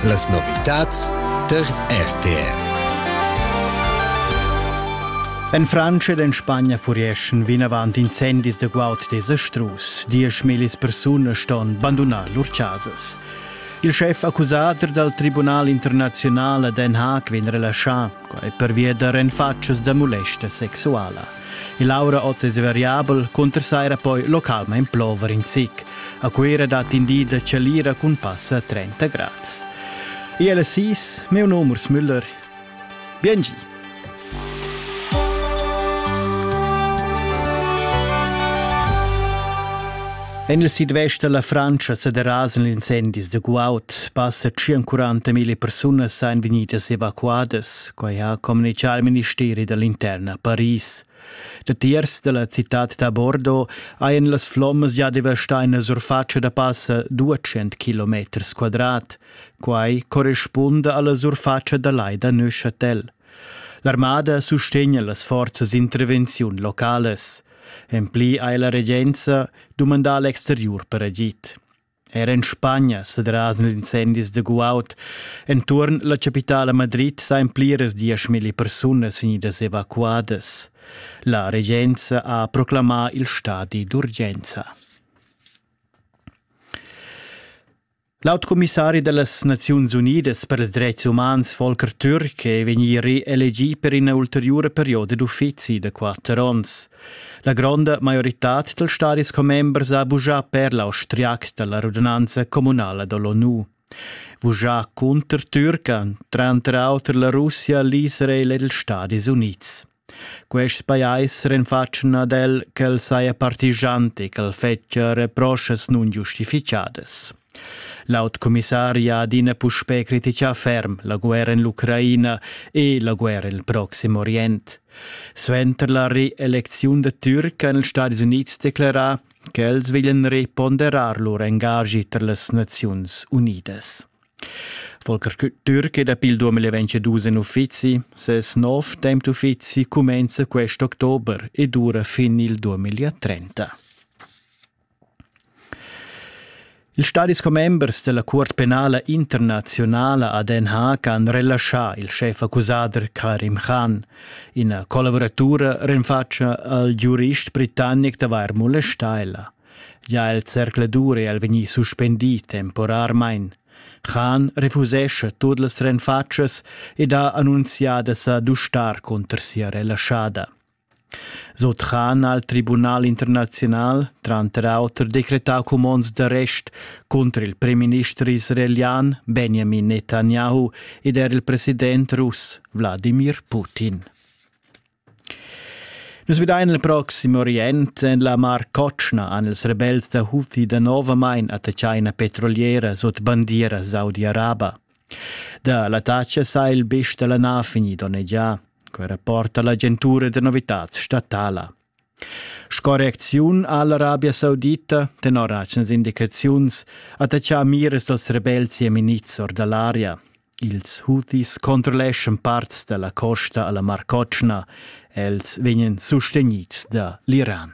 Las novitads tar RTR. En Frantscha ed en Spagna furieschan vinavant incendis da guaud desa strus. Diesch millis persunas ston bandunar lur chasas. Il chef accusader dal Tribunal internaziunal a Den Haag vegn relaschà, quai pervia da renfatschas da molesta sexuala. E Laura oz es variabel cunter saira poi localmaing plover in zic. A Cuira dat in di da chalira cun pass a 30 grads. ILS meu numero Müller. Biengi. En il sidvest da la Frantscha sa derasan incendis da guaud. Passa 40.000 persunas èn vegnidas evacuadas, quai ha communitgà il ministeri da l'interna a Paris. Datiers da la citad da Bordeaux hajan las flommas già devastà ina surfatscha da passa 200 km quadrat. Quai correspunda alla surfatscha da lai da Neuchâtel. L'armada sustegna las forzas d'intervenziun localas. En pli ha la regenza dumandà l'exteriur per agid. Er en Spagna sa drasen incendis da guaud. Enturn la capitala Madrid sain pliras dieschmilli persunas vegnidas evacuadas. La regenza ha proclamà il stadi d'urgenza. L'aut commissari da las Naziuns Unidas per ils dretgs umans Volker Türk è vegnì reelegì per ina ulteriura perioda d'uffizi da quatter onns. La gronda maioritad dals stadis commembers ha bugià per l'austriac da la radunanza communala da l'ONU. Bugià cunter Türk ha tranter auter la Russia, l'Israel ed ils Stadis Unids. Quests pajais renfatschan ad el ch'el saja partigiant e ch'el fetschia reproschas nungiustifichadas. L'aut commissari ha adina puspè critichà ferm la guerra en l'Ucraina e la guerra en il Proxim Orient. Suenter la reelecziun da Türk han ils Stadis Unids declerà ch'els veglian reponderar lur engagi tar las Naziuns Unidas. Volker Türke dapi il 2022 en uffizi. Ses nov temp d'uffizi cumenza quest october e dura fin il 2030. Il stadis commembers della Cuort penala internazionala a Den Haag han relascià il chef accusader Karim Khan. Ina collaboratura renfatscha al giurist britannic d'avair molestà ella. Gia el zercladur è el vegnì suspendì temporarmain. Khan refusescha tut las renfatschas ed ha annunzià da sa dustar cunter sia relaschada. Sut Khan ha il Tribunal internaziunal tranter auter decretà cumonds d'arrest cunter il premierminister israelian Benjamin Netanyahu ed er il president russ Wladimir Putin. Nus vedein il proxim orient en la Mar Cotschna han ils rebels da Houthi danovamain attaccà ina petroliera sut bandieras Saudi-Arabia. Da l'attacca sa il bist dalla nav vegnì donnegià. Quei rapporta l'agentura da novitads statala. Sco reacziun ha l'Arabia Saudita, tenor atgnas indicaziuns, attachà miras dals rebels jemenids or da l'aria. Ils Houthis controlleschan parts da la costa a la Mar Cotschna. Els vegnan sustegnids da l'Iran.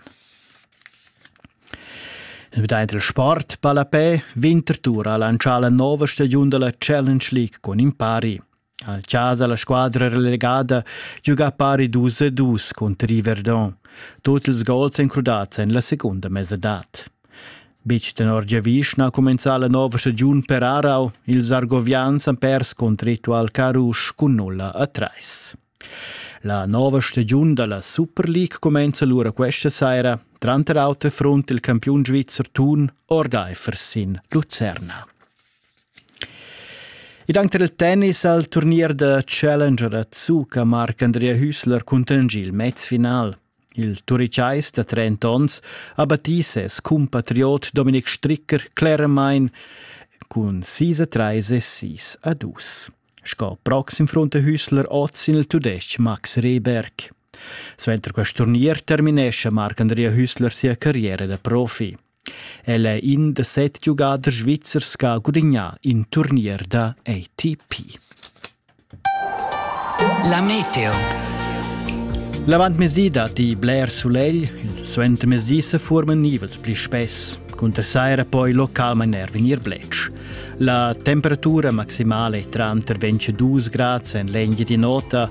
Daint il sport ballapè Winterthur ha lantschà la nova stagiun da la Challenge League cun in pari. Al chasa la squadra relegada giuga pari dus e dus cunter il Verdun, tut ils gols encrudats en la secunda mesadad. Bitg tenor giavischna ha cumenzà la nova stagiun per Aarau. Ils Argovians han pers cont Ritual Carusch cun nulla a trais. La nova stagiun da la Super League cumenza lura questa saira, tranter auter front il campiun svizzer Thun Orgeifer sin Lucerna. Ed anche il tennis al turnier da Challenger da Zucca marca Andrea Hüßler cuntegni il mezfinal. Il turicais da 30 onns ha battì ses cumpatriot Dominik Stricker cleramain cun sis a trais e sis a dus. Sco proxim fronte Hüßler oz sin il tudestg Max Reberg. Suenter quest turnier terminescha Marc-Andrea Hüssler sia carriera da profi. El è in da set giugaders svizzers che ha gudignà in turnier da ATP. La meteo. L'avantmezdi dat i bler sulegl, il suentermezdi se forman nivels pli spess. Cunter saira poi localmain er vegnir bletsch. La temperatura maximale è tranter 22 grad en l'engia di nota